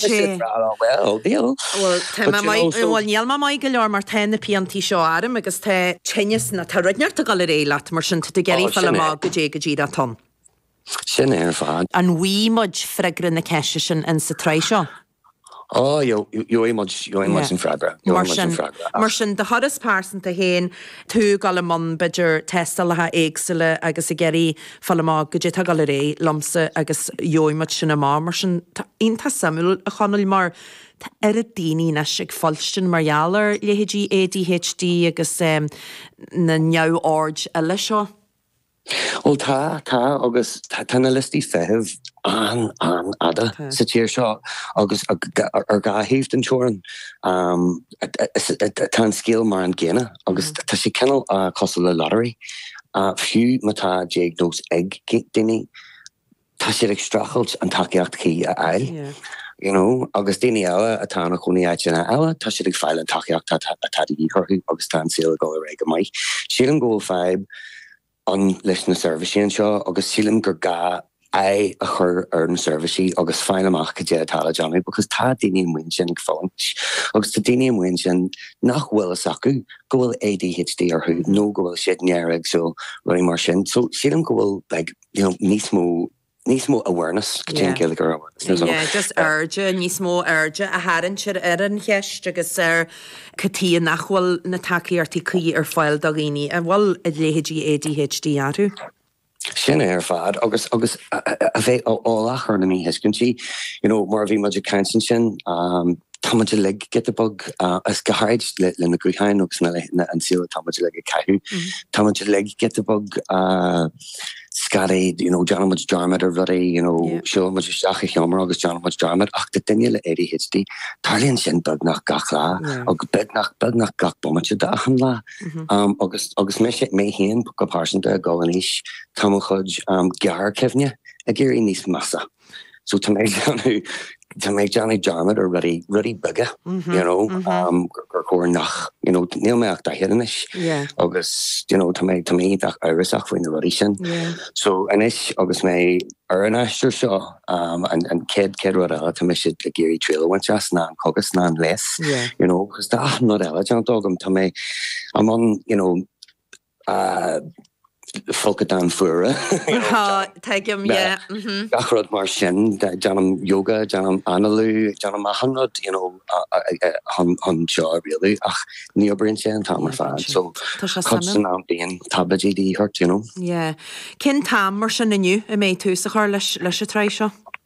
Bhuel, níl mé maith go leor mar tá na piantaí seo orm agus tá tinneas na, tá rud inteacht ag dul ar aghaidh leat mar sin tá tú ag iarraidh fáil amach goidé, goidé atá ann. Sin é ar fad. An bhfaighidh muid freagra na ceiste sin in sa tsraith seo? Ó, gheobhaidh muid, gheobhaidh muid an freagra, gheobhaidh muid an freagra ach. Mar sin, do thuras pearsanta féin, tú ag dul i mbun b'fhéidir tástálacha éagsúla agus ag iarraidh fáil amach goidé atá ag dul ar aghaidh liomsa agus gheobhaidh muid sin amach. Mar sin, tá iontach suimiúil, a Chonaill, mar tá oiread daoine anois ag fuilstin mar gheall ar leithéidí ADHD agus na neamhoird eile seo. Bhuel, tá, tá, agus tá na liostaí feithimh an-an-fhada sa tír seo agus ar dhá thaobh den teorainn. Tá an scéal mar an gcéanna agus tá sé cineál cosúil le lottery. Fiú má tá diagnóis ag daoine, tá siad ag streachailt an tacaíocht chuí a fháil. You know, agus daoine eile atá ina chónaí áiteanna eile, tá siad ag fáil an tacaíocht atá de dhíth orthu agus tá an saol ag dul ar aghaidh go maith. Sílim go bhfuil fadhb ann leis na seirbhísí anseo agus sílim gur gá aghaidh a chur ar na seirbhísí agus fáil amach cad é atá le déanamh because tá daoine amuigh ansin ag fulaingt agus tá daoine amuigh ansin nach bhfuil fhios acu go bhfuil ADHD orthu nó go bhfuil siad néaréagsúil, rudaí mar sin. So sílim go bhfuil like, you know, níos mó. níos mó awareness, goidé an Ghaeilge ar awareness, níos mó. Yeah, just airde, níos mó airde a tharraingt ar an cheist agus ar cad chuige nach bhfuil na tacaíochtaí cuí ar fáil do dhaoine a bhfuil leithéidí ADHD orthu. Sin é ar fad agus agus a bheith eolach ar na míthuiscintí, you know, mar a bhí muid ag caint ansin, tá muid uilig giota beag, is go háirid le na gutháin agus na an saol atá muid uilig ag caitheamh, tá muid uilig giota beag. scatty, you know, déanann muid dearmad ar rudaí, you know, siúlann muid isteach a sheomra agus déanann muid dearmad ach do duine le ADHD tarlaíonn sin beagnach gach lá agus beagnach, beagnach gach bomaite d'achan lá. Um, agus, agus mé, mé féin go pearsanta ag dul in aois, tá mo chuid, um, gearrchuimhne ag éirí níos measa. So tá mé ag déanamh, tá mé ag déanamh dearmad ar rudaí, rudaí beaga, you know, gur chóir nach, you know, níl mé ach daichead anois agus, you know, tá mé, tá mé iontach amhrasach faoi na rudaí sin. So anois agus mé ar an aistear seo, an chéad, céad rud eile tá mise ag iarraidh triail a bhaint as ná an cogas ná an leigheas, you know, agus tá achan rud eile déanta agam, tá mé, I'm on, you know, folcadáin fuara. Tuigim, yeah. Gach rud mar sin. Déanaim yoga, déanaim análú, déanaim achan rud, you know, chun seo a rialú ach ní oibríonn sé an t-am ar fad. So, cuid den am bíonn taibléidí de dhíth ort, you know? Yeah. Cén t-am mar sin inniu a mbeidh tús á chur leis an tsraith seo?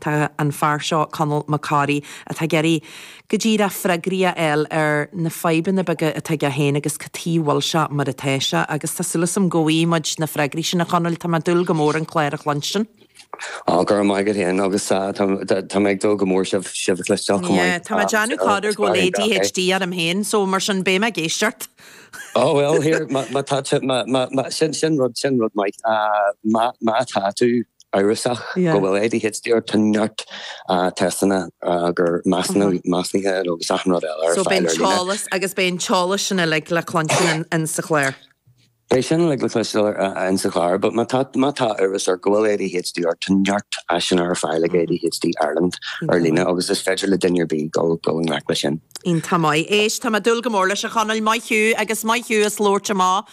Tá an fear seo, Conall Mac Corraidh, atá ag iarraidh cuid de na freagraí a fháil ar na fadhbanna beaga atá aige féin agus cad tuige a bhfuil sé mar atá sé. Agus tá súil agam go bhfaighidh muid na freagraí sin, a Chonaill. Tá mé ag dúil go mór an clár a chluinstin. Á, go raibh maith agat féin agus tá mé ag dúil go mór sibh sibh a chloisteáil chomh maith. Tá mé ag déanamh corruair go bhfuil ADHD orm féin so mar sin beidh mé ag éisteacht. Ó bhuel here, má tá tú, má, má, má, sin, sin rud, sin rud maith. Má, má tá tú amhrasach go bhfuil ADHD ort tá neart teisteanna agus measúnuithe agus achan rud eile ar fáil ar líne. Agus beidh an t-eolas sin uilig le cluinsiú in Inse Chláir? Beidh sin uilig le cluinsiú in Inse Chláir, but má tá má tá amhras ort go bhfuil ADHD ort tá neart áiseanna ar fáil ag ADHD Ireland ar líne agus is féidir le duine ar bith dul dul i ngleic leis sin. Iontach maith. Éist, tá mé ag dúil go mór leis, a Chonaill, maith thú agus maith thú as labhairt amach.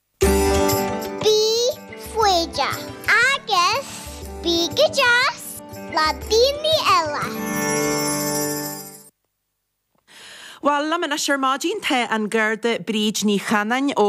Bí foighdeach agus bí go deas le daoine eile. Bhuel liom anois ar maidin, tá an Garda Bríd Ní Chanáin ó.